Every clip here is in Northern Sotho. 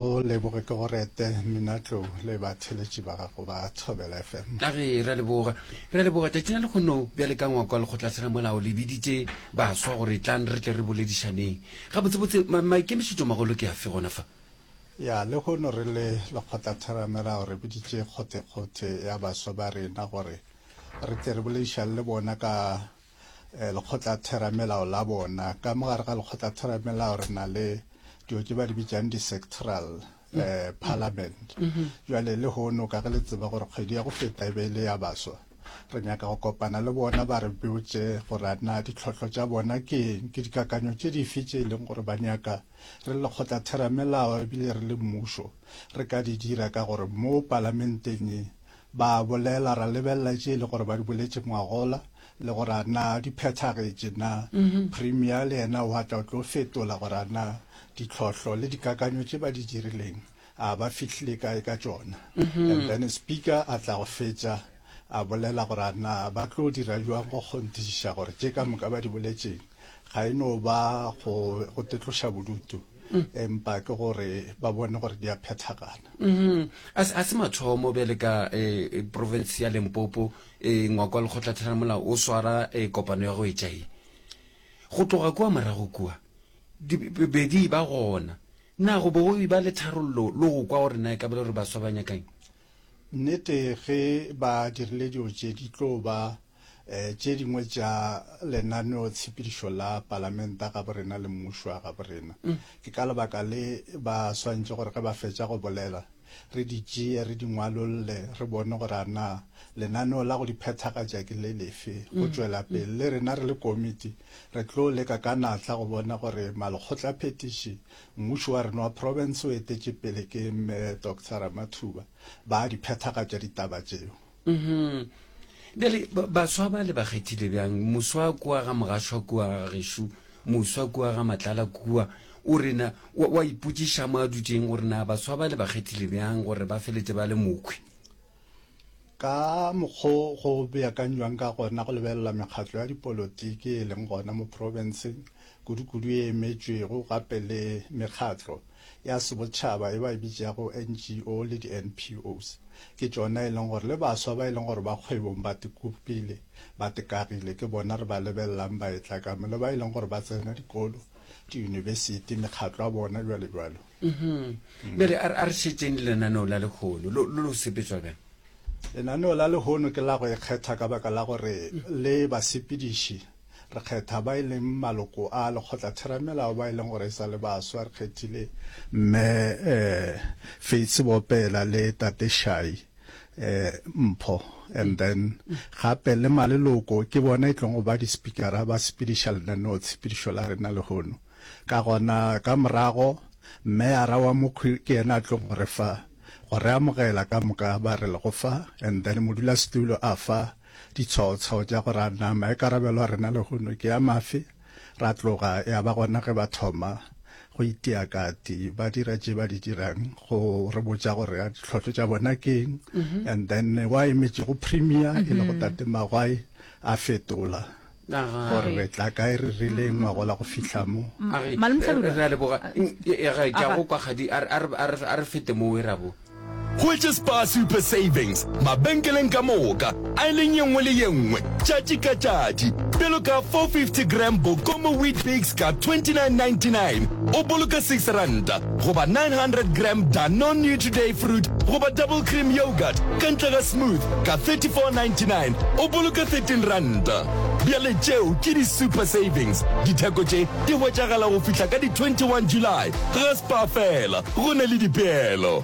O leboge ke go rete Mmina Tlou le ba theletši ba gago ba Thobela FM. A re re a leboga. Re a leboga tšatši la lekgono bjale ka ngwako wa lekgotlatheramolao le biditše baswa gore tlang re tle re boledišaneng. Gabotsebotse ma maikemišetšomagolo ke afe gona fa? Ya, lekgono re le lekgotlatheramelao re biditše kgothekgothe ya baswa ba rena gore re tle re boledišane le bona ka lekgotlatheramelao la bona. Ka mo gare ga lekgotlatheramelao re na le dilo tse ba di bitsang di-sectoral eh, parliament jwale le hono ka ge le tseba gore kgwedi ya go feta e be e le ya baswa re nyaka go kopana le bona ba re botse gore a na ditlhotlho tša bona ke eng ke dikakanyo tše dife tše e leng gore ba nyaka re le lekgotlatheramelao ebile re le mmušo re ka di dira ka gore mo palamenteng e Ba a bolela, ra lebelela tše e le gore ba di boletše ngwagola, le gore a na di phethagetše na. Premier le yena wa tla o tlo fetola gore a na ditlhohlo le dikakanyo tše ba di dirileng a ba fihlile kae ka tšona. And then Speaker a tla go fetša a bolela gore a na ba tlo dira bjang go kgonthišiša gore tše ka moka ba di boletšeng ga e no ba go tetloša bodutu. mm. empa ke gore ba bone gore di a phethagana mm-hmm. a se mathomo bjale ka eh, eh, province ya lempopo eh, ngwako wa lekgotlathela molao o swara kopano ya go etšae go tloga kua morago kua bedi ba gona na go bo ba le tharollo le go kwa gore na e ka bele gore baswa ba nyakang nnete ge ba dirile dilo tse di tlo ba Tše dingwe tša lenaneo tshepedišo la palamenta gaborena le mmušo wa gaborena. Ke ka lebaka le ba swantše gore ge ba fetša go bolela re di tšee re di ngwalolle re bone gore a na lenaneo la go di phethagatša ke le lefe go tšwela pele. Le rena re le komiti re tlo leka ka natla go bona gore malekgotlaphethiši, mmušo wa rena wa profense o etetše pele ke Mme Doctor Ramathuba, ba a di phethagatša ditaba tšeo. mm-hmm. bjale baswa ba le ba kgethile bjang moswa kua ga mogashwa kua gešo moswa kua ga matlala kua o rena wa ipotsiša mo a dutseng gore na baswa ba le ba kgethile bjang gore ba feletse ba le mokhwi ka mokgo go beakanywang ka gona go lebelela mekgatlo ya dipolotiki e leng gona mo provinceng kudu-kudu e emetšwego gape le mekgatlo ya sebotšhaba e ba e bitšago NGO le di-NPOs, ke tšona e leng gore le baswa ba e leng gore ba kgwebong ba tekopile, ba tekagile, ke bona re ba lebelelang ba etla ka mo, le ba e leng gore ba tsena dikolo, diyunibesithi, mekgatlo ya bona, jwalo jwalo. Mm-hmm. Bjale a re- a re šetseng le lenaneo la lehono lo lo lo sepetswa bjang? Lenaneo la lehono ke la go ikgetha ka baka la gore le basepediši Re kgetha ba e leng maloko a lekgotlatheramelao ba e leng gore e sa le baswa. Re kgethile Mme Faith Sebopela le Tate Shai Mpho and then gape le maleloko ke bona e tlong go ba di-speakera ba sepediša lenaneo tshepedišo la rena lehono. Ka gona ka morago Mme Arawamokhwi ke yena a tlong go re fa go re amogela ka moka ba re lego fa and then modulasetulo a fa Ditshwao-tshwao tša go ra na maikarabelo a rena lehono ke a mafe? Ra tloga ya ba gona ge ba thoma go itia kati ba dira tše ba di dirang go re botša gore a ditlhohlo tša bona ke eng and then wa emetšego premier e lego tate Magwai a fetola. Gore re tla kae re rile ngwago la go fihla mo. Malome Hlabirwa. Re a leboga. Ga ke a go kwa kgadi a re fete mo we ra bo. Hwetše Spar Super Savings mabenkeleng ka moka, aileng ye nngwe le ye nngwe, tšatši ka tšatši. Bjalo ka 450 gram Bokomo Weet-Bix ka 29.99 o boloka 6 ranta, goba 900 gram Danone New Today Fruit goba Double Cream Yogurt ka ntle ga Smooth ka 34.99 o boloke 13 ranta. Bjale tšeo ke di super savings, ditheko tše di hwetšagala go fihla ka di 21 July. Ga Spar fela go na le dipeelo.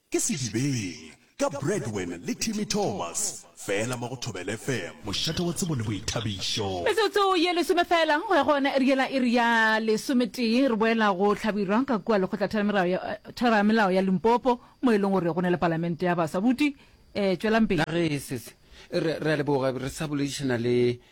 Ke Sedibeng, ka Bradwin le Timmy Thomas, fela mo go Thobela FM. Mošate wa tsebo le boithabišo. Metsotso ye lesome fela go ya go yona e riela iri ya lesometee, re boela go hlabirwa ka kua Lekgotlatheramelao ya Limpopo mo e leng gore go na le Palamente ya Baswa. Buti, tšwelang pele. Nagee sese re re a leboga re sa boledišana le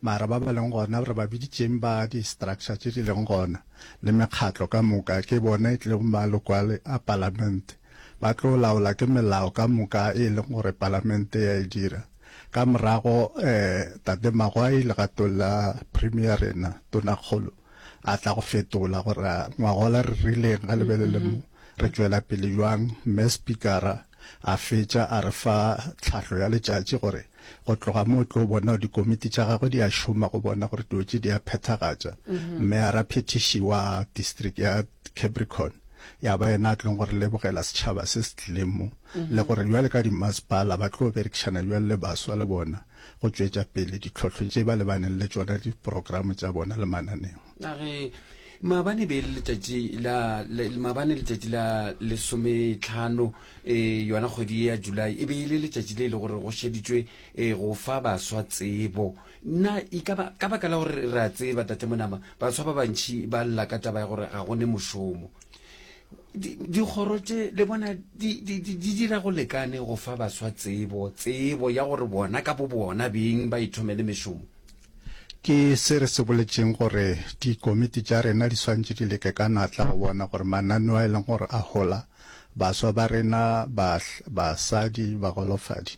Mara ba ba leng gona re ba biditšeng ba di structure tše di leng gona le mekgatlo ka moka ke bona e tlilego maloko a palamente ba tlo laola ke melao ka moka e leng gore palamente ya e dira ka morago Tate Magwai legatong la Premier rena Tonakgolo a tla go fetola gore ngwagola re rileng ga lebelele mo re tšwela pele jwang mme Spikara a fetša a re fa tlhahlo ya letšatši gore Go tloga mo o tlo bona gore dikomiti tša gagwe di a šoma go bona gore dilo tše di a phethagatša. Mme a raphethiši wa district ya Capricorn ya ba yena a tlong gore lebogela setšhaba se se tlileng mo le gore bjale ka dimmasepala ba tlo berekišana bjang le baswa le bona go tšwetša pele ditlhohlo tše ba lebaneng le tšona, diprogramo tša bona le mananeo. a re maabane be le letšatši la maabane letšatši la lesometlhano um yona kgwedi ya july e be e le letšatši le e le gore go šeditšwe um go fa baswa tsebo nna e ka baka la gore re a tseba tate monama baswa ba bantšhi ba lla ka taba ya gore ga go ne mošomo dikgoro tše le bona di dira go lekane go fa baswa tsebo tsebo ya gore bona ka bo bona beng ba ithomele mešomo Ke se re se boletšeng gore dikomiti tša rena di swantše di leke ka natla go bona gore mananeo a e leng gore a hola baswa ba rena, bahl, basadi, bagolofadi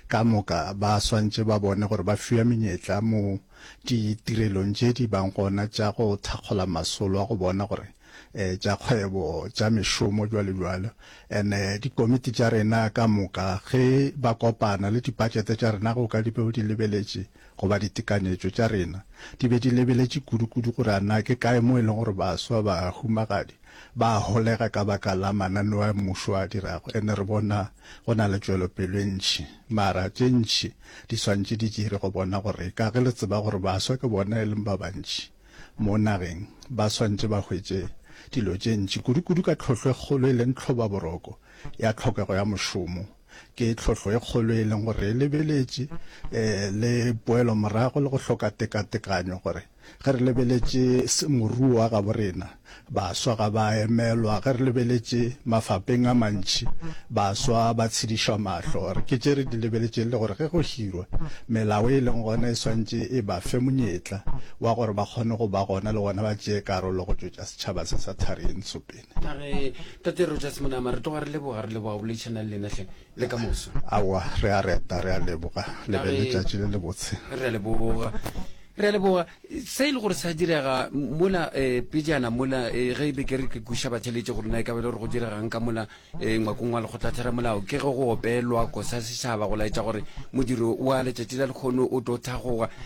ka moka ba swantše ba bone gore ba fiwa menyetla mo ditirelong tše di bang gona tša go thakgola masolo a go bona gore eh, tša kgwebo, tša mešomo, bjalo bjalo. And eh, dikomiti tša rena ka moka ge ba kopana le dipatšete tša rena go ka di beo di lebeletše Goba ditekanyetšo tša rena di be di lebeletše kudukudu gore a na ke kae moo e lego gore baswa, bahumagadi, ba a holega ka baka la mananeo a mmušo a dirago. And re bona go na le tšwelopelo e ntši. Mara tše ntši di swantše di dire go bona gore eka ge le tseba gore baswa ke bona e leng ba bantši mo nageng, ba swantše ba hwetše dilo tše ntši, kudukudu ka tlhohlo e kgolo e leng tlhobaboroko ya tlhokego ya mošomo. Ke tlhohlo e kgolo e leng gore e lebeletše le poelo morago le go hloka tekatekanyo gore ge re lebeletše moruo wa gabo rena, baswa ga ba emelwa, ge re lebeletše mafapeng a mantši, baswa ba tshedišwa mahlo. Gore ke tše re di lebeletšeng le gore ge go hirwa, melao e leng gona e swantše e ba fe monyetla wa gore ba kgone go ba gona le gona ba tšee karolo go tšwetša setšhaba se sa Thari e Ntsho pele. a re tate rogers monama re tloga re leboga re leboga o boledišana le lena hle le ka moso awa re a reta re a leboga le be letšatši le le botse re a leboga re a leboga se e le gore sa direga mola um pejana mola eh, ge e be ke re ke kuša batšheletše gore na e ka be le gore go diregang ka mola um ngwakong wa lekgotlatheramolao ke ge go opelwa kosa setšhaba go laetša gore modiro wa letšatši la lekgono o tlo thagoga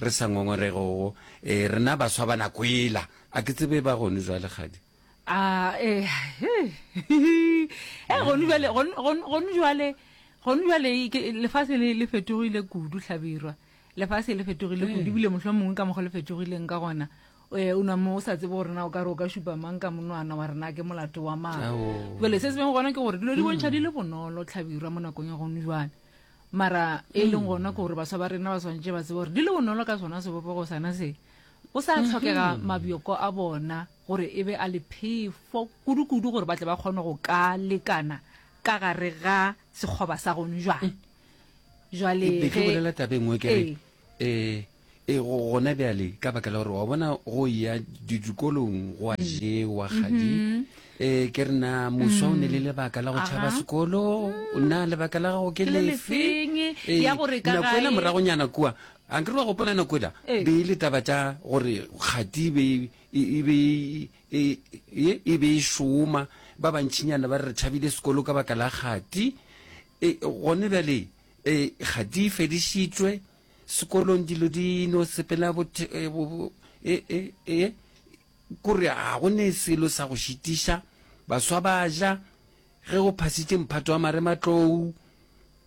Re sa ngongorego go, e, rena baswa ba nako ela. A ke tsebe ba gone jwale, kgadi? A, e, he, he, he. E, gone jwale, gone, gone, gone jwale, gone jwale e, ke, lefase le, le fetogile kudu, hlabirwa. Lefase le fetogile kudu, ebile mohlomongwe ka mokgwa le fetogileng ka gona, e, o nwa mo o sa tsebe gore na o ka re o ka šupa mang ka monwana wa rena, ke molato wa mang. Ao. Jwale se se bego gona ke gore dilo di bontšha di le bonolo, hlabirwa, mo nakong ya gone jwale. mara e leng gona ke gore baswa ba rena ba swantše ba tsebe gore di le bonolo ka sona sebopego sana se go sa mm-hmm. tlhokega mabjoko a bona gore e be a lephefo kudu-kudu gore ba tle ba kgone go ka lekana ka gare ga sekgoba sa gone jwale mm. jwale ke bolela tabeng o kere eh, eh E, go, gona bjale, ka baka la gore wa bona go ya di- dikolong go a jewa kgadi. E, ke re na moswa o ne le lebaka la go tšhaba Aha. sekolo, na lebaka la gago ke Ke le lefe? lefeng, E, ya gore ka nako ela gae- moragonyana kua, a nkere wa gopola nako ela, E. be e le taba tša gore kgati e be e- e- e be e- e- e- e be e šoma, ba bantšhinyana ba re re tšhabile sekolo ka baka la kgati. E, gone bjale, e, kgati e fedišitšwe, sekolong dilo di no sepela bothe e, e, e, e kore ga go ne selo sa go šitiša baswa ba ja ge o phasitše mphato wa marematlou um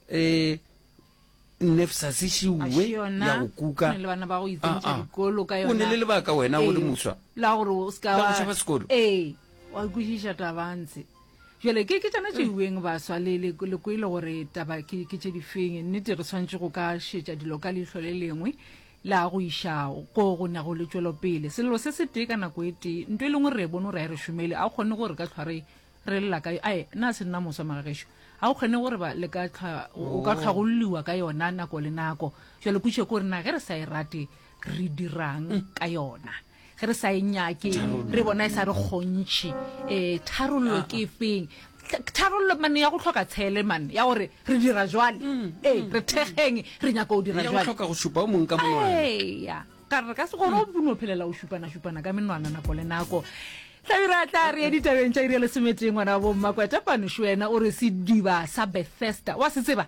e, nefsa se šiwe ya go kuka ah, ah. o ne le lebaka wena o le ee. moswa la gore o ska wa sekolo ee wa kwešiša tabantshe Bjale, ke, ke tšona tše iweng, baswa, le, le, le kwele gore taba ke, ke tše difeng. Nnete, re swanetše go ka šetša dilo ka leihlo le lengwe la go iša go go nago le tšwelopele. Sello se se tee ka nako e tee. Nto e lengwe re e bone gore ga e re šomele. Ga go kgone gore re ka hlwa re, re lla ka yo. Ae, na se nna moswa, magagešo? Ga go kgone gore ba, le ka hlwa, o ka hlwa go lliwa ka yona nako le nako. Bjale, pušo ke gore na ge re sa e rate, re dira'ng ka yona? ge re sa e nyake re bona e sa re kgontšhe um eh, tharollo ah, ke ah. feng tharollo mane ya go tlhoka tshele mane ya gore re dira jwale mm, ee mm, re thekgeng mm. re nyaka go dira jwale tlhoka go supa o mongwe ka monwana ka re ka se gone o bone o phelela o supana-supana ka menwana nako le nako tlabira tla re ye ditabeng tša iri ya lesometee ngwana wa bommakweta panošo wena o re sediba sa bethesda wa se tseba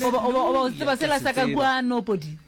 oba o tseba sela sa ka kua nopodi